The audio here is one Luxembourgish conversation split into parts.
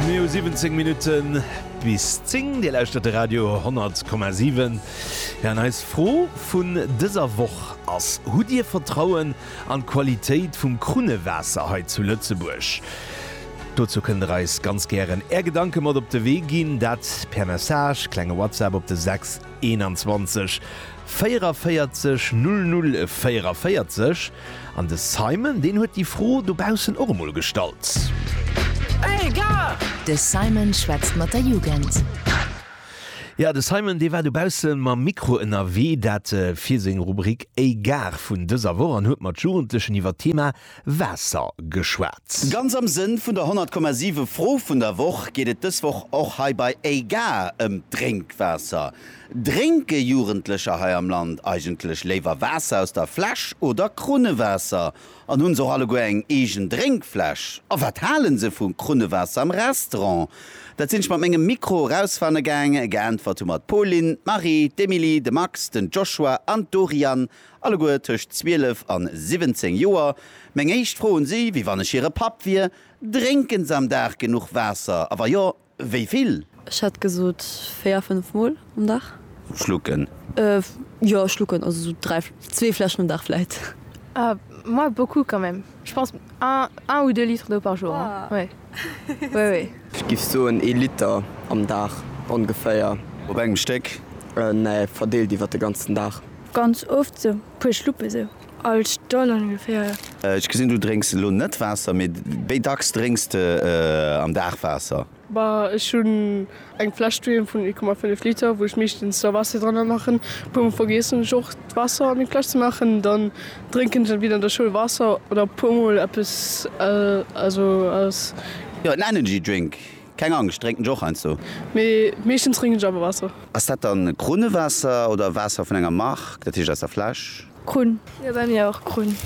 Mir hu 17 Minutten bis 10, Dir lauschtert de Radio 10,7. Ja an eis Fro vun dëser Woch ass, Hutt Dir Vertrauen an d'Qualitéit vum Krunnewaasser hei zu Lëtzebuerg? Dozou kënnt Der eis ganz gären Är Gedanke mat op de Wee ginn, dat per Message, klenge WhatsApp op de 6 21. 44 00 44 An de Simon, deen huet déi Fro dobaussen och emol gestallt. Hey Gare! De Simon schwätzt mat der Jugend. Jo, de Simon, dee war dobausse mam Mikro ënnerwee, dat fir seng Rubrik Hey Gare vun dëser Woch, an huet mat Jugendlechen iwwer d'Thema Waasser geschwat. Ganz am Sënn vun der 100,7 Fro vun der Woch geet et dës Woch och hei bei Hey Gare ëm d'Drénkwaasser. Drénke Jugendlecher hei am Land eigentlech léiwer Waasser aus der Fläsch oder Krunnewaasser? An hunn se och alleguer eng eegen Drénkfläsch? A wat hale se vu Krunnewaasser am Restaurant? Dat sinn ech mat mengem Mikro erausfanne gaang. Geäntwert hu mer d'Pauline, d'Marie, d'Emilie, de Max, den Joshua an d'Doriane, alleguer tëscht 12 an 17 Joer. Meng éischt Fro un si, Wéi wann ech hire Papp wier, Drénke se am Dag genuch Waasser? A wa jo, Wéi vill? Ech hätt gesot véier, fënnf Mol um Dag. Schlucken? Jo, schlucken, also sou dräi, zwee Fläschen um Dag vläit. Ah, moi, beaucoup quand même. Je pense un, un ou deux litres d'eau par jour, oui, oui, oui. Ech géif soen ee Liter am Dag ongeféier. Op engem Stéck? Nee, verdeelt iwwer de ganzen Dag. Ganz oft, sou puer Schluppe sou. All Stonn ongeféier. Ech gesinn du drénks elo net Waasser, mee wéi dacks drénks de am Dag Waasser? Bah ech hunn eng Fläsch doheem vun 1,5 Liter wou ech meeschtens da Waasser dranner maachen. E puer mol vergiessen ech och d'Waasser an déi Fläsch ze maachen, dann drénken ech entweder an der Schoul Waasser oder e puer mol eppes also aus. Jo en Energy Drink, keng Angscht, drénken ech och heiansdo. Mee meeschtens drénken ech awer Waasser. Ass dat dann Kruunewaasser oder Waasser vun enger Mark, dat heescht aus der Fläsch? Krunn. Jo bei mir och Krunn.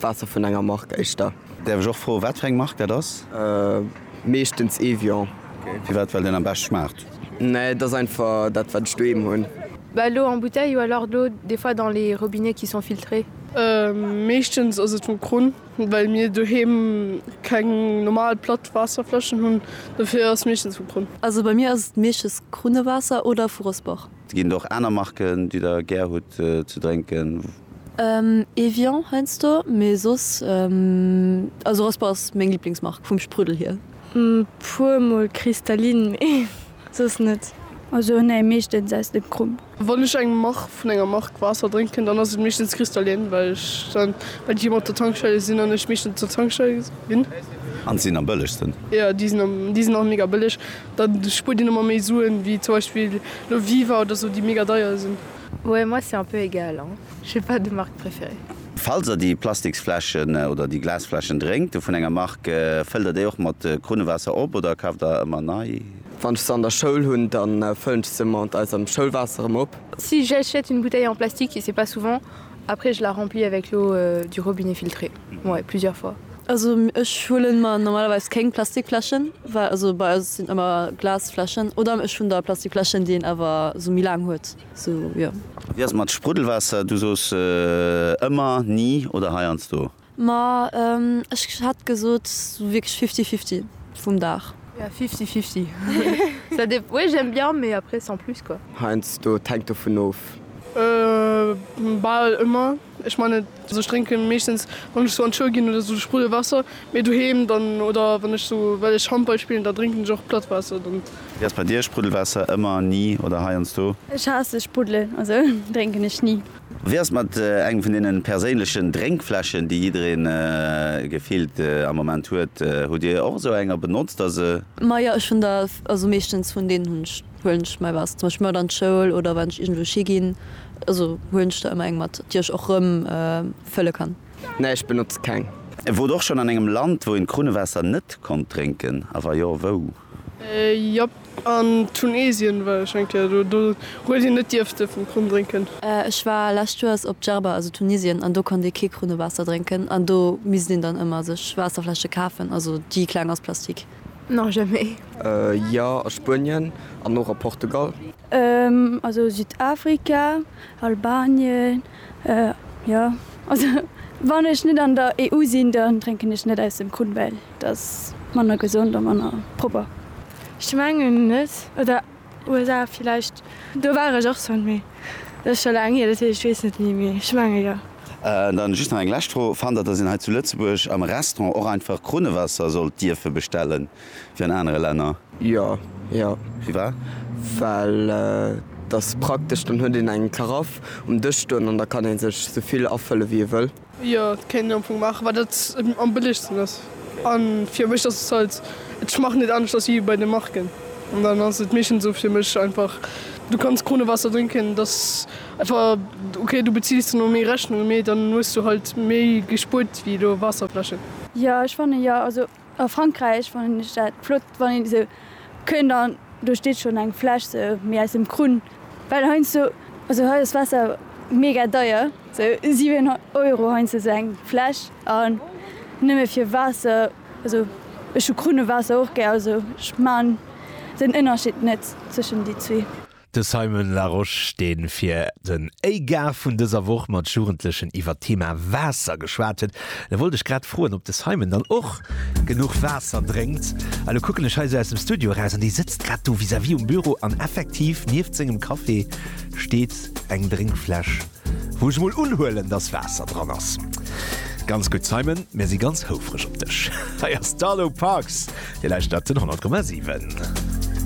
Waasser vun enger Mark éischter. Däerf ech och froen wat fir eng Mark dat ass? Meeschtens Evian. Firwat? Well deen am bescht schmaacht? Nee et ass einfach dat wat ech doheem hunn. Bah lo en bouteille ou alors d'eau des fois dans les robinets qui sont filtrés. Meeschtens ass et vum Krunn well mir doheem keng normal platt Waasserfläschen hunn dofir ass meeschtens vum Krunn. Also bei mir ass et meeschtens Krunnewaasser oder vu Rossbach. Et ginn och aner Marken déi der gär hutt ze drénken? Evian heiansdo, mee soss, also Raspa ass meng Liblingsmark vum Spruddel hier. Puer mol Cristalline, mee soss net. Also nee, meeschtens aus dem Krump. Wann ech eng Mark vun enger Mark Waasser drénken, dann ass et meeschtens Cristalline, well ech dann well déi ëmmer op der Tankstelle sinn an ech meeschtens op der Tankstelle sinn. An se sinn am bëllegsten. Jo, déi sinn am, déi sinn och mega bëlleg. Da spuert een emmer méi Suen, wéi zum Beispill lo Viva oder sou, déi mega deier sinn. Ouais moi c'est un peu égal hein, j'ai pas de marque préférée. Falls der déi Plastiksfläschen oder déi Glasfläschen drénkt vun enger Marque, fëllt der déi och mat Krunnewaasser op oder kaaft der ëmmer nei? Wann ech se an der Schoul hunn, dann fëllen ech se mat eisem Schoulwaasser erëm op. Si j'achète une bouteille en plastique et c'est pas souvent. Après je la remplis avec l'eau du robinet filtrée ouais plusieurs fois. Also ech huelen mer normalerweis kéng Plastikfläschen, well also bei eis sinn ëmmer Glasfläschen oder ech hunn da Plastikfläschen, déi een awer sou méi laang huet sou jo. A wéi ass et mat Spruddelwaasser? Du soos ëmmer, ni oder heiansdo? Ma ech hätt gesot sou wierklech fifty fifty vum Dag. Ja fifty fifty ça dépend oui j'aime bien mais après sans plus quoi. Heiansdo, et hänkt dovun of. Bal ëmmer, ech meine ech drénken meeschtens wann ech sou an d'Schoul ginn oder sou Spruddelwaasser, mee doheem dann oder wann ech sou well ech Handball spillen da drénken ech och platt Waasser dann. Wéi ass bei dir? Spruddelwaasser ëmmer, ni oder heiansdo? Ech haasse Spruddel, also drénken ech ni. Wéi ass et mat engem vun deenen perséinlechen Drénkfläschen, déi jiddereen gefillt am Moment huet? Hutt dir och esou eng a benotzt der se? Majo, ech hunn der, also meeschtens vun deenen hunn ech, huelen ech mäi Waasser zum Beispill mat an d'Schoul oder wann ech iergendwousch higinn, also huelen ech der ëmmer eng mat, déi ech och rëm fëlle kann. Nee, ech benotze keng. Wort och schonn an engem Land, wou een d'Krunnewaasser net konnt drénken, a wa jo, wou? Jop, an Tunesien war ech eng Kéier do, do huet een net dierfte vum Krunn drénken. Ech war lescht Joers op Djerba, also Tunisien, an do konnt ee kee Krunnewaasser drénken an do misst een dann ëmmer sech Waasserfläsche kafen, also déi kleng aus Plastik. Non, jamais. Jo, a Spuenien an och a Portugal. Also Südafrika, Albanien, jo, also wann ech net an der EU sinn, dann drénken ech net aus dem Krunn, well. Et ass manner gesond a manner propper. Ech mengen net, oder USA villäicht, do war ech och schonn, mee dat ass scho laang hier, dat heescht ech weess net méi, mee ech menge jo. An dann just nach eng lescht Fro, Fannt Der, dass een hei zu Lëtzebuerg am Restaurant och einfach Krunnewaasser sollt dierfe bestellen, wéi an anere Länner? Jo, jo. Firwat? Well et ass praktesch, dann huet een eng Karaff um Dësch stoen an da kann ee sech esou vill afëlle wéi ee wëll. Jo et kéint een am Fong maachen wat et am bëllegsten ass an fir mech ass et halt ech maachen et anescht ass wéi bei de Marken an dann ass et meeschtens esou fir mech einfach du kanns Kronewaasser drénken dass einfach ok du beziils dann och méi Rechnunge mee dann hues du halt méi gespuert wéi elo Waasserfläschen. Jo ech fannen jo also A Frankräich fannen ech dat flott, wann een esou kënnt an do steet schonn eng Fläsch sou méi aus dem Krunn, well heiansdo, also hei ass Waasser mega deier, sou 7 Euro heiansdo sou eng Fläsch an nëmme fir Waasser, also ech hu Krunnewaasser och gär, also ech man den Ënnerscheed net zwëschen déi zwee. De Simon Larosche, dee fir den ÉiGar vun dëser Woch mat Jugendlechen iwwert d'Thema Waasser geschwat huet. Da wollt ech grad froen, ob de Simon dann och genuch Waasser drénkt. Elo kucken ech hei esou aus dem Studio eraus an dee sëtzt grad do vis-à-vis um Büro an effektiv nieft sengem Café steet eng Drénkfläsch, wou ech mol unhuelen, dass Waasser dran ass. Ganz gutt, Simon, mir si ganz houfreg op dech. Hei ass d'Arlo Parks, Dir lauschtert den 100,7.